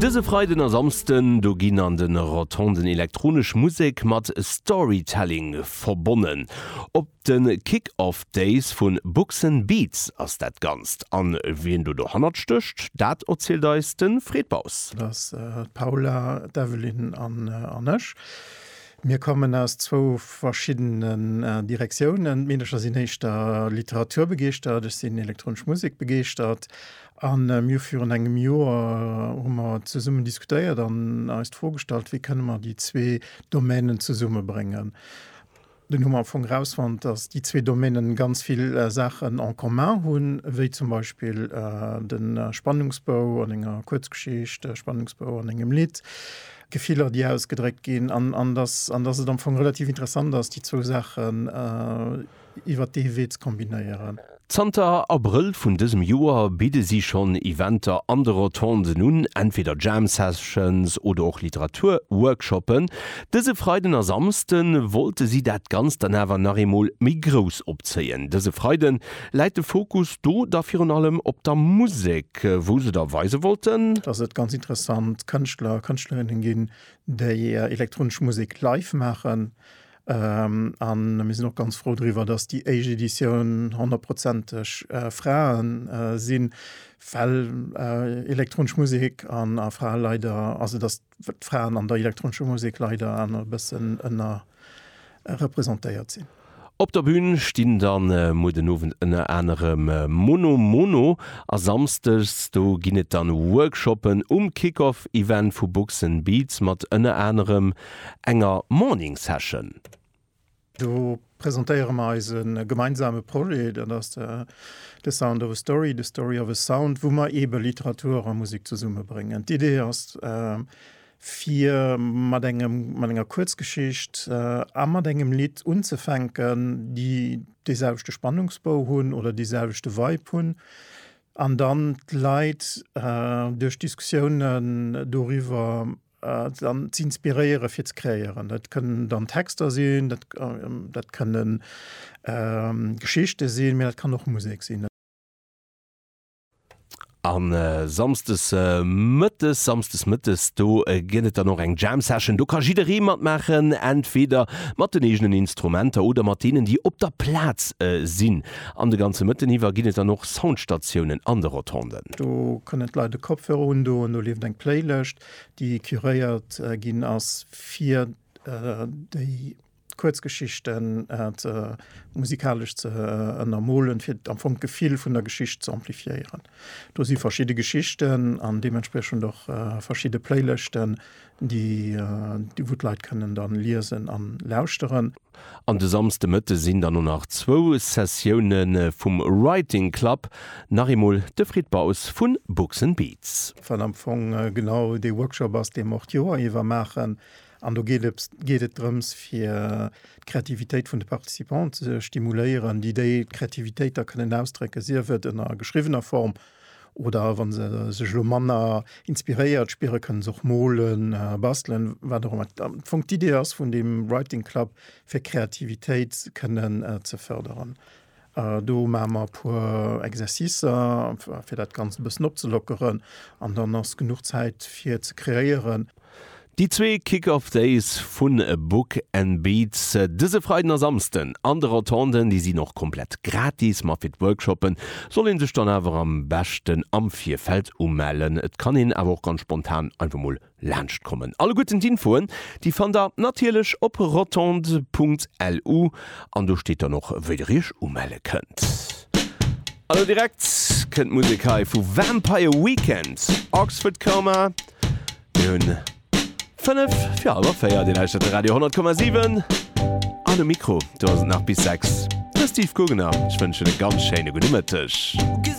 Dëse Freiden a Samsden, do ginn an den Rotonden elektronesch Musek mat Storytelling verbonnen. Op den Kick Off Days vun Buxen Beats ass dat Ganzt. An wien do dohannert stécht, dat erzielt eis den Fred Baus. Dat ass d'Paula, d'Evelyne an ech. Mir kommen aus zwou verschiddenen Direktiounen. D'Meedercher sinn éischter Literatur begeeschtert, ech sinn elektronesch Musek begeeschtert. A mir virun engem Joer hu mer zesummen diskutéiert an eis d'Fro gestallt, wéi kënne mer déi zwee Domänen zesummebréngen. Dunn hu mer am Fong erausfonnt, datt déi zwee Domänen ganz vill Saachen en commun hunn, wéi zum Beispill de Spannungsbou an enger Kuerzgeschicht, de Spannungsbou an engem Lidd, d'Gefiller, déi ausgedréckt ginn, an datt et am Fong relativ interessant ass, déi zwou Saachen, iwwert dee Wee ze kombinéieren. Zanter Abrëll vun dësem Joer bidde si schonn Eventer an de Rotonden un, entweder Jam Sessions oder och Literatur Workshoppen. Dëse Freiden a Samsde wollte si dat Ganzt dann awer nach eemol méi grouss opzéien. Dëse Freide läit de Fokus do da virun allem op der Musek, wou se da weise wollten. Dass et ganz interessant Kënschtler a Kënschtlerinne ginn, déi elektronesch Musek live maachen. An mir sinn och ganz frou driwwer, dass déi éischt Editioun honnertprozenteg Frae sinn, well elektronesch Musek an a Frae leider, also dass d'Fraen an der elektronescher Musek leider awer e bëssen ënnerrepresentéiert sinn. Op der Bün stinn da muer den Owend ënner anerem Mono Mono a samsdes do ginn et dann Workshoppen um Kick-Off-Event vu Books 'n Beats mat ënner anerem enger Morning Session. Do presentéiere mer eise gemeinsame Projet, dat ass The Sound of a Story, The Story of a Sound, wou mer eebe Literatur a Musek zesummebréngen. D'Idee ass, fir mat engem, mat enger Kuerzgeschicht a mat engem Lidd unzefänken, déi dee selwechte Spannungsbou hunn oder dee selwechte Vibe hunn, an dann d'Leit duerch Diskussiounen doriwwer Dann z'inspiréiere fir ze kreéieren. Dat kënnen dann Texter sinn, dat kënne Geschichte sinn, mä dat kann och Musek sinn. A samsdes mëttes, samsdes mëttes, do gëtt et dann och eng Jam Session. Do ka jidderee matmaachen, entweder mat den eegenen Instrumenter oder mat deenen, déi op der Plaz sinn. An de ganze Mëtten iwwer ginn et dann och Soundstatiounen an de Rotonden. Do kënnen d'Leit e Kopfhörer undoen, do leeft eng Playlëscht, déi curéiert ginn ass fir déi Kuerzgeschichten musikalesch ze ënnermolen, fir am Fong d'Gefill vun der Geschicht ze amplifiéieren. Do si verschidde Geschichten an deementspriechend och verschidde Playlëschten, déi wou d'Leit kënnen da liesen an lauschteren. An de Samsde Mëtte sinn dann och nach zwou Sessioune vum Writing Club, nach eemol de Frid Baus vu Books and Beats. Wat am Fong genau dee Workshop ass, dee mer och d'Joer iwwer maachen. An do geet et drëms, fir d'Kreativitéit vun de Participanten ze stimuléieren, déi déi Kreativitéit da kënnen ausdrécken, sief et ënner geschriwwener Form Oder wann se sech elo manner inspiréiert spieren, kënnen se och molen, bastelen, wat och ëmmer am Fong d'Idee ass vun deem Writing Club, fir Kreativitéit kënnen ze fërderen. Do maache mer e puer Exercicer, fir dat Ganzt e bëssen opzelockeren an dann ass genuch Zäit fir ze kreéieren. Déi zwee Kick-Off Days vu Book and Beats dëse Freiden a Samsden an de Rotonden, déi sinn och komplett gratis, ma fir d'Workshoppe soll ee sech dann awer am beschten am Virfeld umellen. Et kann een awer och ganz spontan einfach mol laanscht kommen. Alleguerten d'Infoen, déi fannt der natierlech op rotondes.lu an do steet dann och wéi der iech umelle kënnt. An elo direkt kënnt Musek hei vu Vampire Weekend, Oxford Coma. Mir hunn 5 fir halber 4 Dir lauschtert de Radio 10,7 an um Mikro do ass et nach bis 6 de Steve Gugner. Ech wënschen e ganz schéine gudde Mëtteg.